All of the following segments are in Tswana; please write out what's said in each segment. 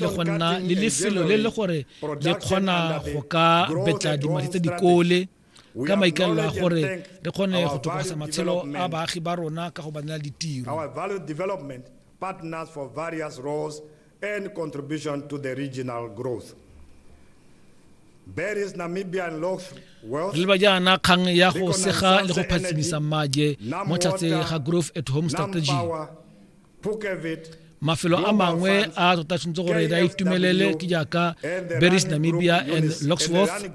le go nna le lefelo le le gore le kgona go ka betla dimadi tsa dikole ka maikaelelo a gore re kgone go tokafasa matshelo a baagi ba rona ka go ba nela ditiro partners for various roles and contribution to the regional growth re leba jaana kgang ya go sega le go phatsimisa mmaje mo tlhatse ga growth at home strategy mafelo a mangwe a a tota tshwanetse gore re a itumelele ke jaaka berries namibia and locksworth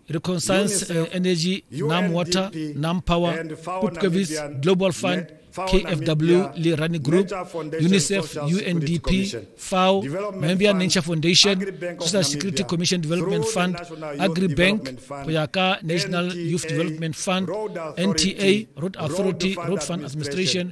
reconciliance uh, energy nam water nam power pupkevis global fund KFW le Rani Group, UNICEF, UNDP, FAO, Namibia Nature Foundation, Social Security Commission Development Fund, AgriBank, Koyaka National Youth Development Fund, NTA, Road Authority, Road Fund Administration,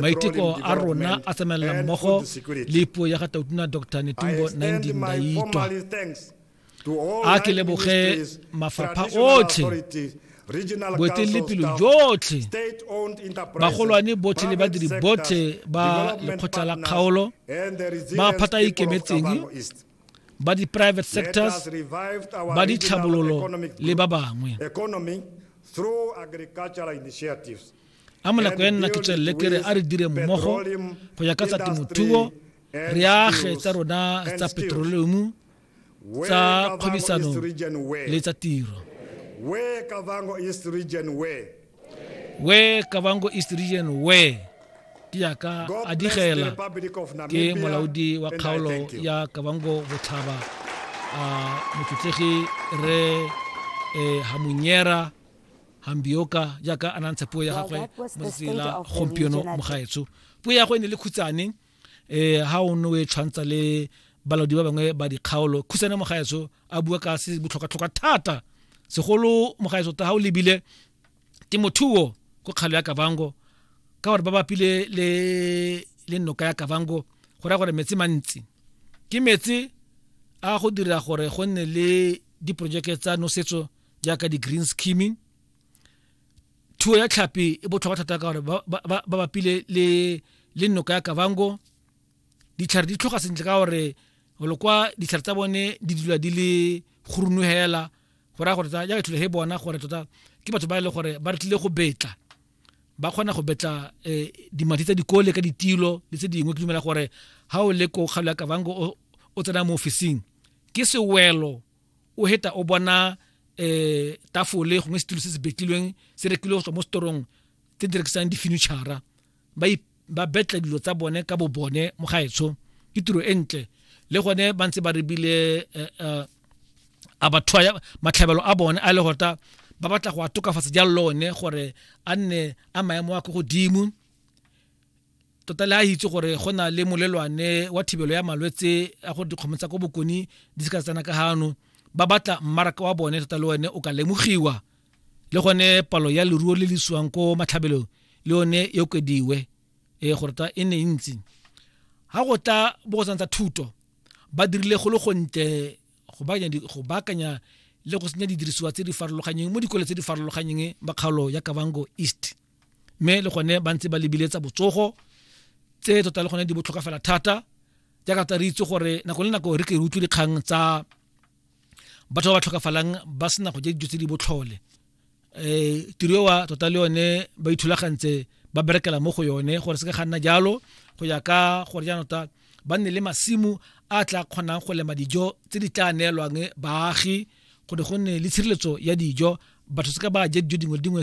maiteko a rona a tsamaelela mmogo le puo ya ga tautuna dr netumbo nandi ndaitwa a ke leboge mafapha otlhe boeteledipelo jotlhe bagolwane botlhe le badiri botlhe ba lekgotla la kgaolo ba phata a ikemetseng ba di-private sectors ba ditlhabololo le ba bangwe a mo nako e nna ke tswelele ke re a re dire mmogo go ya ka tsa temothuo re age tsa rona tsa petroleomu tsa kgwebisano le tsa tiro where kavango east region where where kavango east region where ke yaka a digela ke molaodi wa kgaolo ya kavango botlhaba a motlotlegi re eh, hamunyera hambioka jaaka a nantsha puo ya gagwe mo letsatsing la gompieno mogaetso puo ya go e ne le khutsane um ha o ne o e tshwantsa le balaodi ba bangwe ba dikgaolo khutsane mogaetso a bua ka se botlhokatlhoka thata segolo mogaetso ta ga o lebile temothuo ko kgalo ya kavango ka gore ba bapile le le noka ya kavango go raya gore metsi mantsi ke metsi a go dira gore go nne le diporojeke tsa nosetso jaaka di-green skimming thuo ya tlhapi e botlhokwa thata ka gore ba ba- ba- ba bapile le le noka ya kavango ditlhare di tlhoga sentle ka gore golo kwa ditlhare tsa bone di dula di le gorunu hela go raya gore tsa- jaaka thule he bona gore tota ke batho ba e leng gore ba re tlile go betla ba kgona go betla eh, dimadi tsa dikole ka ditilo le tse dingwe ke dumela gore ha o le ko kgalo ya kavango o- o tsena mo ofising ke sewelo o heta o bona um tafole gongwe setulo se se betlilweng se rekile go tswa mo setorong tse di rekisang di-furnitura ba betla dilo tsa bone ka bo bone mo gaetsho ke tiro e ntle le gone ba ntse ba rebile eh, eh, a batho matlhabelo a bone a le gota ba batla go a tokafatsa jalo le one gore a nne a maemo a ko godimo tota le a itse gore go na le molelwane wa thibelo ya malwetse a gore dikgomo tsa ko bokone di se ka tsena ka gano ba batla mmaraka wa bone tota le one o ka lemogiwa le gone palo ya leruo le le siwang ko matlhabelong le yone e okediwe e gore ta e ne e ntsi ga go tla bokosang tsa thuto ba dirile go le gontle go baakanya le go senya didirisiwa tse di farologanyeng mo dikole tse di farologanyeng ba kgaolo ya kavango east mme le gone ba ntse ba lebile tsa botsogo tse tota le gone di botlhokwa fela thata jaaka tsa re itse gore nako le nako re ke re utlwe dikgang tsa batho ba ba tlhokafalang ba sena go ja dijo tse di botlhole um tiro ewa tota le yone ba ithulagantse ba berekela mo go yone gore se ka ga nna jalo go ya ka gore jaanong tota ba nne le masimo a tla kgonang go lema dijo tse di tla neelwang baagi gore go nne le tshireletso ya dijo batho se ka ba ja dijo dingwe le dingwe